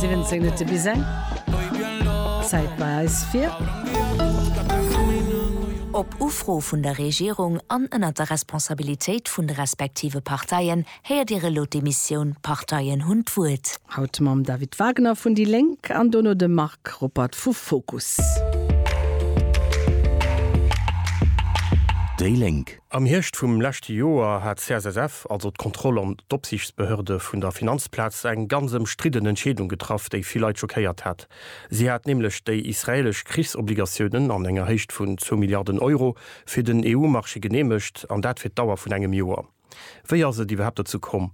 17 Minutte bis eng. D'Zäit bei eis fir. Op Ufro vun der Regierung an ënnert der Responsabilitéit vun de respektive Parteien héiert Dir elo d'Emissioun D'Parteien hunn d'Wuert. Haut mam David Wagner vun déi Lénk an dono dem Marc Ruppert vu Fokus. Déi Lénk. Am Hierscht vum leschte Joer hat d'CSSF, also d'Kontroll an d'Opsiichtsbehörde vun der Finanzplaz, eng ganz ëmstridden Entscheedung getraff, déi vill Leit schockéiert hat. Si hat nämlech déi israelesch Krichsobligatiounen an enger Héicht vun zwou Milliarden Euro fir den EU-Marché geneemegt, an dat fir d'Dauer vun engem Joer. Wéi ass et iwwerhaapt dozou komm?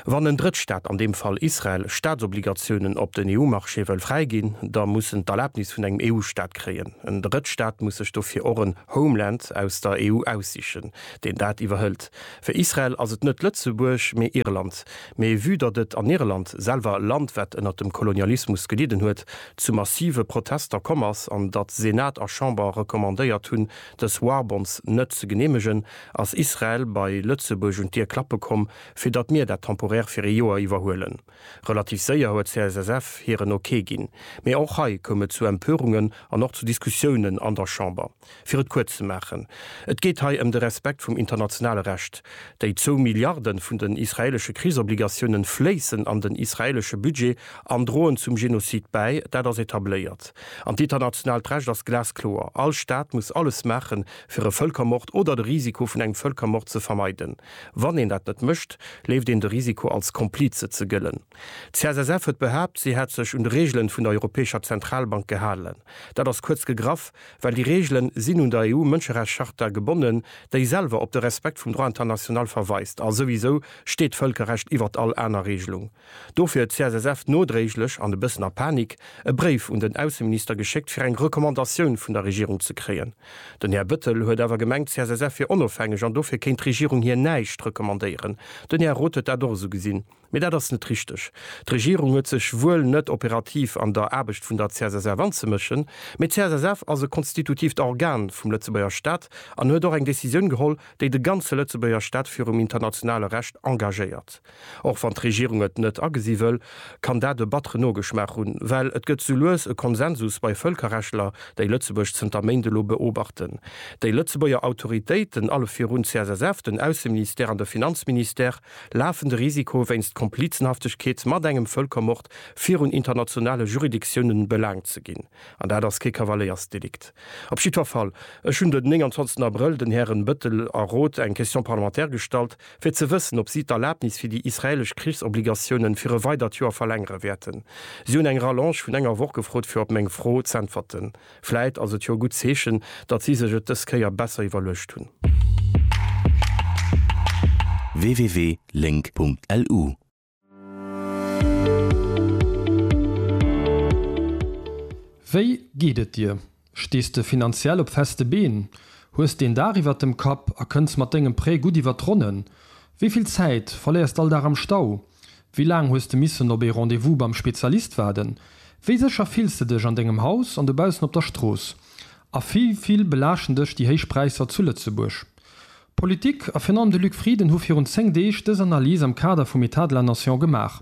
Wann en Drëttstaat, an deem Fall Israel, Staatsobligatiounen op den EU-Marché wëll fräiginn, da muss en d'Erlabnis vun engem EU-Staat kréien. En Drëttstaat muss sech dofir och en Homeland aus der EU aussichen, deen dat iwwerhëlt. Fir Israel ass et net Lëtzebuerg, mee Irland. Mee vue datt et an Irland, selwer e Land, wat ënnert dem Kolonialismus gelidden huet, zu massive Protester komm ass an datt Senat a Chamber recommandéiert hunn, dës Warbonds net ze geneemegen, Ass Israel bei Lëtzebuerg un d'Dier klappe komm, fir datt mir dat temporaire fir ee Joer iwwerhuelen? Relativ séier huet CSSF hiren Ok ginn. Mee och hei koum et zu Empörungen an och zu Diskussiounen an der Chamber. Fir et kuerz ze maachen, Et geet hei ëm de Respekt vum internationale Recht. Déi zwou Milliarde vun den israeelesche Krichsobligatiounen fléissen an den israeelesche Budget an droen zum Genozid bäi. Dat ass etabléiert. An d'internationaalt Recht ass glaskloer, All Staat muss alles maachen, fir e Vëlkermord oder de Risiko vun engem Vëlkermord ze vermeiden. Wann een dat net mécht, leeft een de Risiko als Komplize ze gëllen. D'CSSF huet behaapt, si hätt sech un d'Reegelen vun der Europäescher Zentralbank gehalen. Dat ass kuerz gegraff, well déi Reegelen sinn un der EU-Mënscherechtscharta gebonnen, déi selwer op de Respekt vum Droit international verweist. A souwisou steet d'Vëlkerrecht iwwert all aner Reegelung. Dofir huet d'CSSF nodréiglech an e bëssen a Panik e Bréif un den Ausseminister geschéckt fir eng Recommandatioun vun der Regierung ze kréien. Den Här Bëttel huet awer gemengt d'CSSF wier onofhängeg an dofir kéint d'Regierung hir näischt recommandéieren. Den Här Roth huet dat och esou gesinn, mee dat ass net richteg. D'Regierung huet sech wuel net operativ an der Aarbecht vun der CSSF anzemëschen, mee d'CSSF ass e konstitutiivt Organ vum Lëtzebuerger Staat an huet och eng Decisioun geholl, déi de ganze Lëtzebuerger Staat virum internationale Recht engagéiert. Och wann d'Regierung et net agesi wëll, kann dat e battere Nogeschmaach hunn, well et gëtt sou lues e Konsensus bei Vëlkerrechtler, déi Lëtzebuerg zënter Méint elo beobachten. Déi Lëtzebuerger Autoritéiten, alle virun d'CSSF, den Ausseministère an de Finanzministère, lafen de Risiko, wéinst Komplizenhaftegkeet mat engem Vëlkermord virun internationale Juridictiounen belaangt ze ginn. An dat ass kee Kavaléiersdelikt. Op jiddwer Fall, ech hunn den 29 Abrëll den Hären Bettel a Roth eng Question parlementaire gestallt, fir ze wëssen, ob si d'Erlabnis fir déi israelesch Krichsobligatiounen fir e weidert Joer verlängere wäerten. Si hunn eng Rallonge vun enger Woch gefrot, fir op meng Fro z'äntwerten. Vläit ass et jo e gutt Zeechen, datt si sech et dës Kéier besser iwwerluecht hunn. www.link.lu Wéi geet et dir? Stees de finanziell op feste Been? Hues deen Daach iwwert dem Kapp a kënns mat dengem Prêt gutt iwwert d'Ronnen? Wéi vill Zäit verléiers d'all Dag am Stau? Wéi laang hues de missen op ee Rendez-vous beim Spezialist waarden? Wéi sécher fills de dech an dengem Haus an dobaussen op der Strooss? A wéi vill belaaschten dech déi héich Präisser zu Lëtzebuerg? D'Politik a virun allem de Luc Frieden hu virun 10 Deeg dës Analys am Kader vum Etat de la Nation gemaach,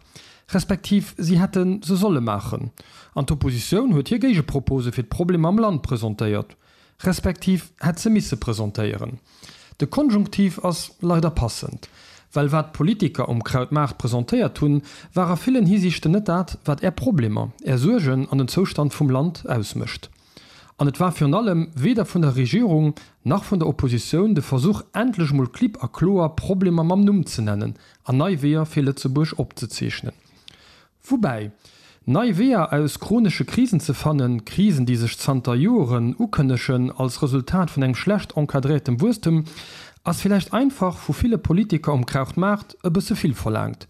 respektiv si hätte se solle maachen. An d'Oppositioun huet hir Géigepropose fir d'Problemer am Land presentéiert, respektiv hätt se misse presentéieren. De Konjunktiv ass leider passend, well wat d'Politiker um Krautmaart presentéiert hunn, war a villen Hisiichten net dat, wat Är Problemer, Är Suergen an den Zoustand vum Land ausmécht. An et war virun allem weder vun der Regierung nach vun der Oppositioun de Versuch, endlech emol klipp a kloer Problemer mam Numm ze nennen an nei Weeër fir Lëtzebuerg opzezeechnen. Woubäi, nei Weeër aus chronesche Krisen ze fannen, Krisen, déi sech zanter Joeren ukënnegen als Resultat vun engem schlecht encadréiertem Wuesstem, ass villäicht einfach vu ville Politiker um Krauchtmaart e bësse vill verlaangt.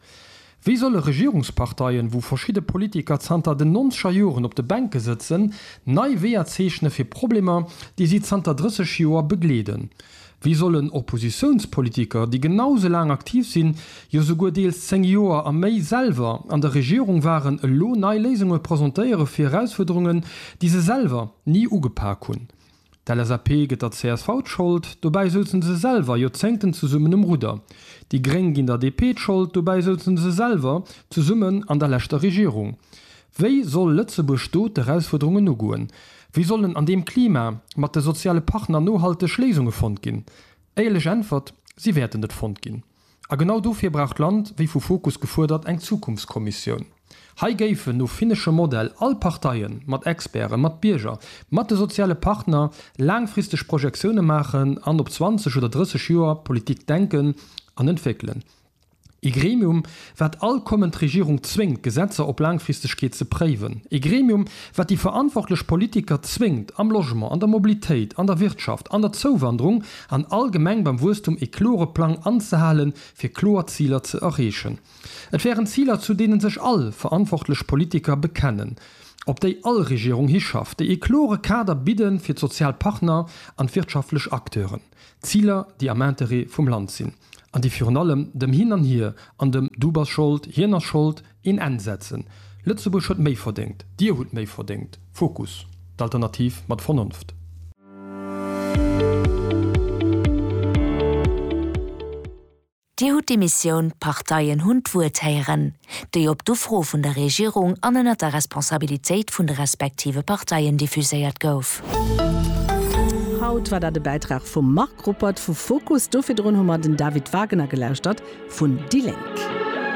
Wéi solle Regierungsparteien, wou verschidde Politiker zanter den nonzeger Joren op de Bänke sëtzen, nei Weeër zeechne fir Problemer, déi si zanter 30 Joer begleeden? Wéi sollen Oppositiounspolitiker, déi genau esou laang aktiv sinn, jo souguer deels 10 Joer a méi, selwer an der Regierung waren, elo nei Léisunge presentéiere fir Erausfuerderungen, déi se selwer ni ugepak hunn? D'LSAP gëtt der csv d'Schold, dobäi souzen se selwer Joerzéngten zesummen um Rudder. Déi Gréng ginn der DP d'Schold, dobäi souzen se selwer zesummen an der leschter Regierung. Wéi soll Lëtzebuerg do d'Erausfuerderungen ugoen? Wéi sollen an deem Klima mat de soziale Partner nohalteg Léisunge fonnt ginn? Éierlech Äntwert, Si wäerten net fonnt ginn. A genau dofir brauch d'Land, wéi vu Fokus gefuerdert, eng Zukunftskommissioun. Hei géifen, no finneschem Modell, all Parteien, mat Experten, mat Bierger, mat de soziale Partner, laangfristeg Projektioune maachen an op 20 oder 30 Joer Politik denken an entwéckelen. Ee Gremium, Wat all kommend Regierung zwéngt, Gesetzer op Laangfristegkeet ze préiwen. E Gremium, wat déi verantwortlech Politiker zwéngt, am Logement, an der Mobilitéit, an der Wirtschaft, an der Zouwanderung, an allgemeng beim Wuesstum e klore Plang anzehalen, fir kloer Ziler ze erreechen. Et wären Ziler, zu deene sech all verantwortlech Politiker bekennen, op déi all Regierung hischafft, déi e klore Kader bidde fir d'sozial Partner an d'wirtschaftlech Acteuren. Ziler, déi am Interêt vum Land sinn. An déi virun allem dem Hin an Hier an dem Du bass Schold, Hien ass Schold een Enn setzen. Lëtzebuerg huet méi verdéngt. Dir hutt méi verdéngt. Fokus, d'Alternativ mat Vernonft. Dir hutt d'Emissioun D'Parteien hunn d'Wuert héieren. déi op d'Ufro vun der Regierung an ënnert der Responsabilitéit vun de respektive Parteien diffuséiert gouf. Haut war dat e Bäitrag vum Marc Ruppert vu Fokus. Do virdrun hu mer den David Wagener gelauschtert vun déi Lénk.